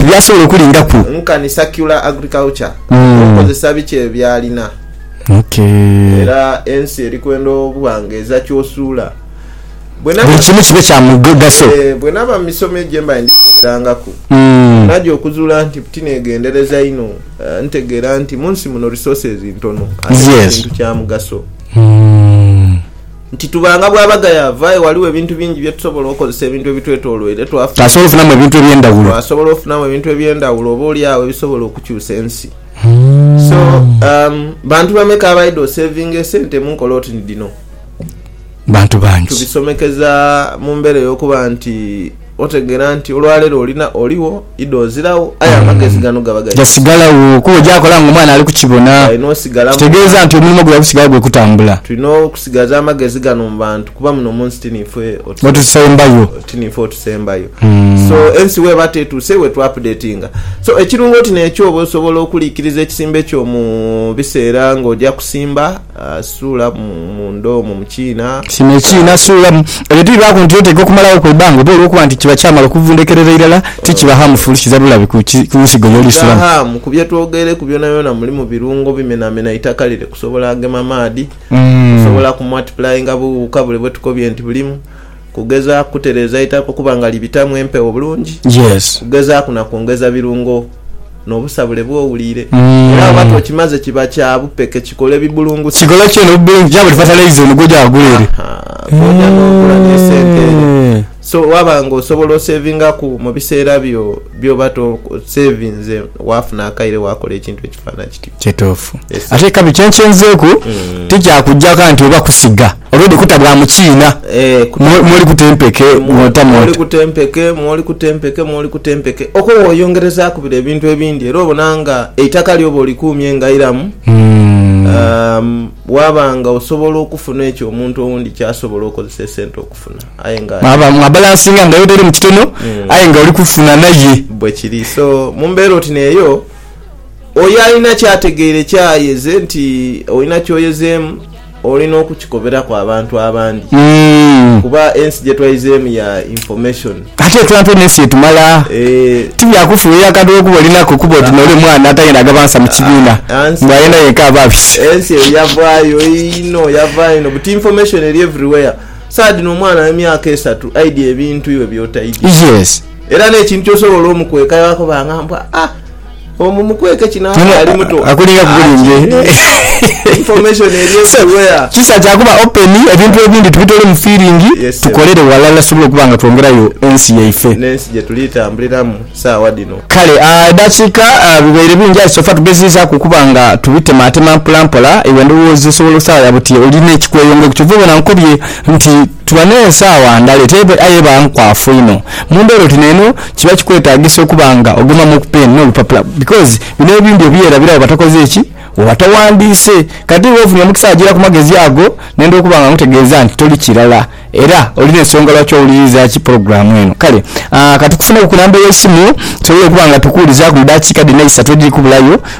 byasobola okulinga ku. Nkani circular agriculture okozesa biki ebyo byalina. Era ensi eri kwenda obughanga eza kyosuula. Buli kimu kibe kya mugaso. Bwenaba mu misomo egyo gyembaire ndi kukoberangaku, naja okuzuula nti tinegendereza inho ntegeera nti munsi muno resources ntono ate buli kintu kyamugaso. Nti tuba nga bw'aba gayaavu, aye ghaligho ebintu bingi bye tusobola okozesa ebintu ebitwetooloire. Twasobola ofunamu ebintu eby'endhawulo. Twasobola ofunamu ebintu eby'endhawulo oboolyawo ebisobola okukyusa ensi. So, umm, bantu bameka abaidha oseevinga esente mu nkola oti ni dhino? Bantu bangi. Tubisomekeza mu mbeera ey'okuba nti. Otegeera nti olwaleero olina, oligho, idho oziragho, aye amagezi gano gaba gaife. Gasigalagho kuba ojakola nga omwana ali kukibona. Galina osigala mu Kitegeeza bantu. nti omulimo gwe gusigala gwe kutambula. Tulina okusigaza amagezi gano mu bantu kuba muno mu nsi ti niife Otusembayo. ti niife otusembayo. So, ensi bw'eba tetuuse iwe tu updatinga. So, ekirungo ti n'ekyo oba osobola okuliikiriza ekisimbe kyo mu biseera ng'oja kusimba. Suula munda omwo mu kiina. Kino ekiina suula mu. Ebyo tibibaaku nti oteekwa kumalagho ku ibanga oba olw'okuba nti kiba kyamala okuvundhekerera irala, ti kiba haamu fulusiza bulabe ku nsigo y'oli suula mu. Kiba haamu. Ku bye twogeireku byonabyona mulimu birungo bimenamena itaka lire kusobola agema maadhi, kusobola kumwatipulainga bughuka bule bwe tukobye nti bulimu. Kugezaaku kutereeza itaka okuba nga libitamu empewo bulungi. Kugezaaku na kwongeza birungo n'obusabule bw'owuliire. Era bwoba tokimaze kiba kya bupeke kikola ebibulungusa. Kw'oja n'ogula n'esente eyo. So waba nga osobola osevingaku mu biseera byo by'oba tosevinze waafuna akaire waakola ekintu ekifaana kityo. Kituufu. Ate ekabi kyenkyenzeeku tikyakujaka nti oba kusiga already kuta bwa mukiina mwoli kuta empeke mwota mwota. Mwoli kuta empeke mwoli kuta empeke mwoli kuta empeke okwo woyongerezaaku bire ebintu ebindi era obona nga eitaka lyo oba olikuumye nga iramu waba nga osobola okufuna ekyo omuntu owundi kyasobola okozesa esente okufuna aye nga mwa balansinga nga yotairemu kitono aye nga oli kufuna naye. Bwekiri so mumbeera oti neeyo. Oyo alina ky'ategeire ky'ayeeze nti olina ky'oyezeemu, olina okukikoberaku abantu abandi kuba ensi gye twaizeemu ya information. Ate entonotono ensi etumala. Ti bya kufuuhirira akantu olw'okuba olinaku okuba oti n'oli omwana atayenda agaba nsa mu kibiina mbu ayenda yenka aba abise. Ensi eyo yavaayo inho, yavaayo inho buti information eri everywhere. Saagha dhino omwana wa myaka esatu aidya ebintu iwe by'otaidya era n'ekintu ky'osobola omukweka yakoba nga mbu, ah! Omu mukweke kino akyali muto kisa kyakuba open ebintu ebindi tubitole mu feeling tukolere walala tusobole okuba nga twongerayo ensi yaife nensi gyetuli tambuliramu sawa dhino. Kale edakika bibaire bingi aye sofa tugezezaku okuba nga tubitematema mpolampola iwe ndowooza osobola osaagha buti olina ekikweyongaireku kyova obona nkobye nti Tuba n'ensaawa ndala etebe aye eba nkwafu inho. Mu mbeera oti n'eno kiba kikwetaagisa okuba nga ogomamu ku peeni n'olupapula because bino ebindi obyerabira wo batakoze ki? Wo batawandiise. Kati iwe ofunye omukisa agira ku magezi ago nenda okuba nga nkutegeeza nti toli kirala era olina ensonga lwaki owuliriza ki pulogulaamu eno. Kale ka tukufuneku ku namba y'eisimu tusobole okuba nga tukuwulizaaku mu daakiika dhino eisatu edhiri kubulayo.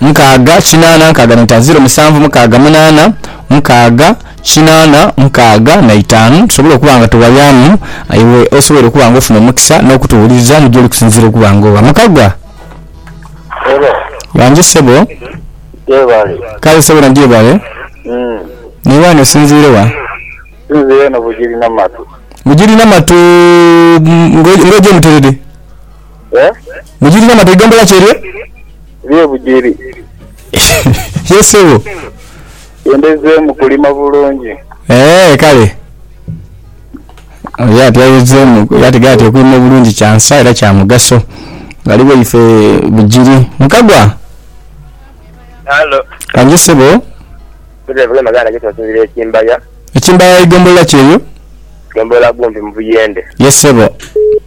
Mukaaga, kinaana, nkaaga na itaanu, ziro, musanvu, mukaaga, munaana, mukaaga, kinaana, mukaaga na itaanu. Tusobola okuba nga tuwayaamu aye iwe osoboire okuba nga ofuna omukisa n'okutuwuliriza ni gy'oli kusinziira okuba nga owa. Mukagga! Hello. Wangi ssebo. Gyebale. Kale ssebo na gyebale. Mm. Naye wani osinziire wa? Nsinziire eno Bugiri Namatu. Bugiri Namatu mm, nga nga oja e Muterere? Eh? Bugiri Namatu eigombola ki eryo? Ebye bujiri. Yes sebo. Yendezemu kulima bulungi. Eeh kale. Oyo ati ayezemu ati gaya ati okulima obulungi kya nsa era kya mugaso. Ghaligho ife bujiri. Mukagwa. Halo. Kangi sebo. Mbuze vule maganda gye tunsinzira ekimbaya. Ekimbaya igombolola ki eyo? Gombolola gumpi mu buyende. Yes sebo.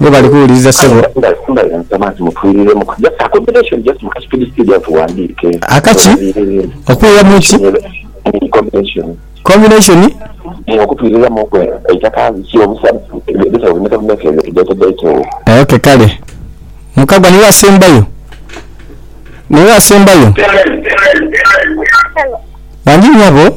Webale kuwuliriza sebo. Akaki? Okwiramu ki? Combination? Ok kale. Mukagwa niwe asembayo? Niwe asembayo? Wangi nyabo.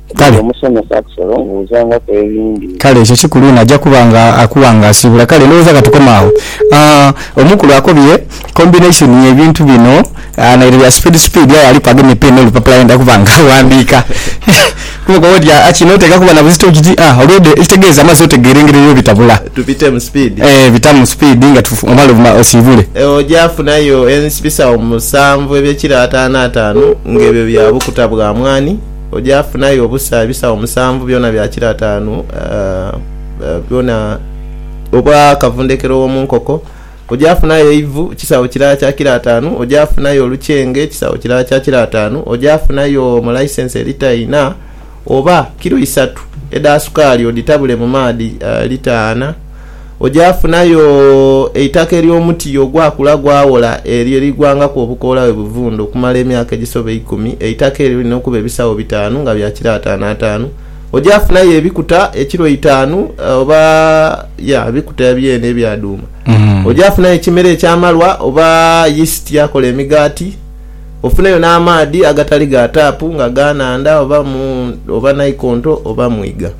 Kale. Nze omusomesa Axel mbuuzangaku ebindi. Kale, ekyo kikulu inho. Aja kuba nga akuwa nga asiibula. Kale, ndhowooza ka tukome agho. Ah, omukulu akobye combination ye bintu bino, ah, naire bya speed speed, aye aliku agemye pen n'olupapula ayenda kuba nga aghandiika. Kuba okoba oti, Ah, kino oteeka kuba na buzito kiti? Ah, olwo dhe, ekitegeeza amazzi otegeera engeri eyo bwebitabula. Tubitemu speed. Eh, bitamu speed nga tu, omale obuma, osiibule. Eyo oja afunayo ensi, bisaawo musanvu eby'ekiro ataanu ataanu, nga ebyo bya bukuta bwa mwaani. Oja funayo obusa ebisawo musanvu byona bya kilo atanu byona obwa kavundhekero wo munkoko. Oja funayo eivu kisawo kilala kya kilo atanu. Oja funayo olukyenge kisawo kilala kya kilo atanu. Oja funayo molaisense elita inha oba kilo isatu edha sukaali odhitabule mu maadhi lita ana. Oja funayo eitaka ery'omuti ogwakula gwawola eryo erigwangaku obukoola bwe buvundha okumala emyaka egisoba eikumi. Eitaka eryo lirina okuba ebisagho bitaanu nga bya kiro ataanu ataanu. Oja funayo ebikuta ekiro eitaanu oba ya ebikuta byene ebya dhuuma. Oja funayo ekimera eky'amalwa oba yisiti akola emigaati. Ofuneyo n'amaadhi agatali ga taapu nga ga nhandha oba naikonto oba mwiga.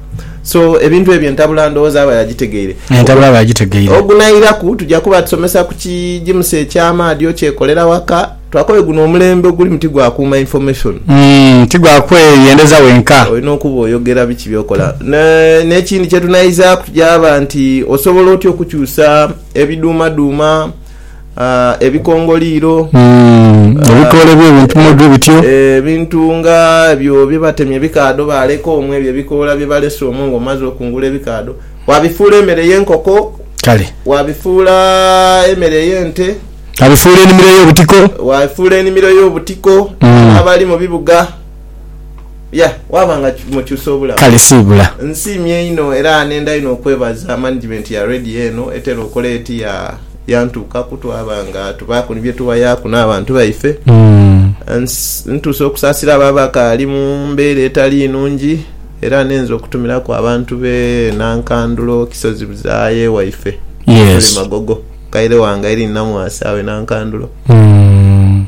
So ebintu ebyo entabula ndowooza aba yagitegeire. Entabula aba yagitegeire. Ogunairaku tuja kuba tusomesa ku kijimusa eky'amaadhi okyekolera waka. Twakobe guno omulembe ogulimu ti gwa kuuma information. Umm ti gwa kweyendeza wenka. Olina okuba oyogera biki by'okola. N'ekindi kye tunaizaaku kyaba nti osobola otya okukyusa ebiduumaduuma. ebikongoliiro. Ebikoola eby'ebintu mwebyo bityo. Ebintu nga ebyo bye batemye ebikaadho baaleka omwo, ebyo ebikoola bye balese omwo ng'omaze okungula ebikaadho. Waabifuula emere y'enkoko. Kale. Waabifuula emere y'ente. Waabifuula enimiro ey'obutiko. Waabifuula enimiro ey'obutiko n'abali mu bibuga. Ya, waaba nga mukyusa obulamu. Kale siibula. Nsiimye inho era nenda inho okwebaza management ya Radio eno etera okola eti ya. Yantuukaku twaba nga tubaaku ni bye tuwayaaku n'abantu baife. Ntuuse okusaasira abo abakaali mu mbeera etali nungi era ninze okutumiraku abantu b'e Nankandulo, Kisozi Buzaaya ewaife ye tuli Magogo. Mukaire wange Irene Namwasa awo e Nankandulo.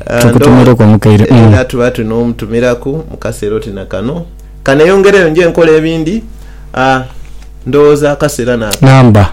Era tuba tuli n'omutumiraku mu kaseera oti na kano. Ka neeyongereyo nje nkole ebindi, ndowooza akaseera naaka.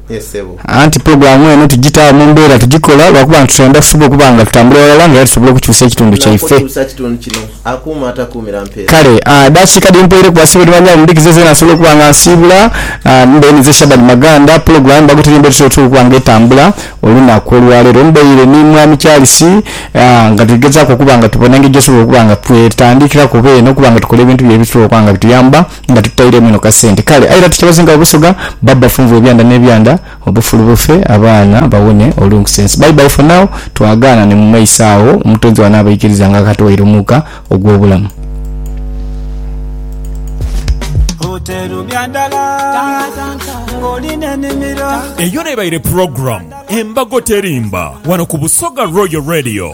Ye sebo. Anti pulogulaamu eno tugitaawo mu mbeera tugikola lwa kuba nti twendha tusobola okuba nga tutambulira ghalala nga era tusobola okukyusa ekitundu Nga kyaife. okukyusa ekitundu kino, akuuma atakuumira mpeera. Kale aa dakiika dhi mpweireku basibe ni banyaye mudhikize zeena nsobole okuba nga nsiibula aa mbe ninze Shaban Maganda. Pulogulaamu Bagoteria emba etutera otera okuba nga etambula olunaku olwaleero. Mbaire ni Mwami Charles aa nga tuli gezaaku okuba nga tubona engeri gyetusobola okuba nga twetandikiraku oba eno okuba nga tukola ebintu byaire ebitusobola okuba nga bituyamba. nga tutairemu inho kasente kale aira tukyabazinga obusoga baba bafunvu ebyanda nebyanda obufulu bufe abaana bawone olunkusense bye bye for now twagaana ni mumaiso agho omutonzi bwanaabaikiriza nga akatuwaire omuuka ogwobulamu. Eyo nebaire program embago terimba wano ku Busoga Royal Radio.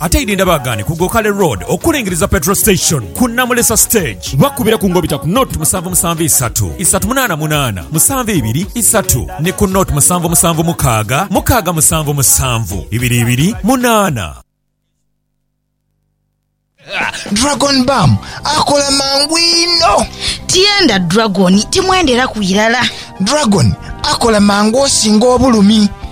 Ate idi ndabaagane ku Gokale Road okulingiriza Petrol Station ku Namulesa Stage. Bakubire ku ngobita ku nought musanvu musanvu isatu, isatu munaana munaana, musanvu ibiri isatu ni ku nought musanvu musanvu mukaaga, mukaaga musanvu musanvu, ibiri ibiri munaana. Dragon Balm akola mangu inho. Tienda Dragon timwenderaku irala. Dragon akola mangu osinga obulumi.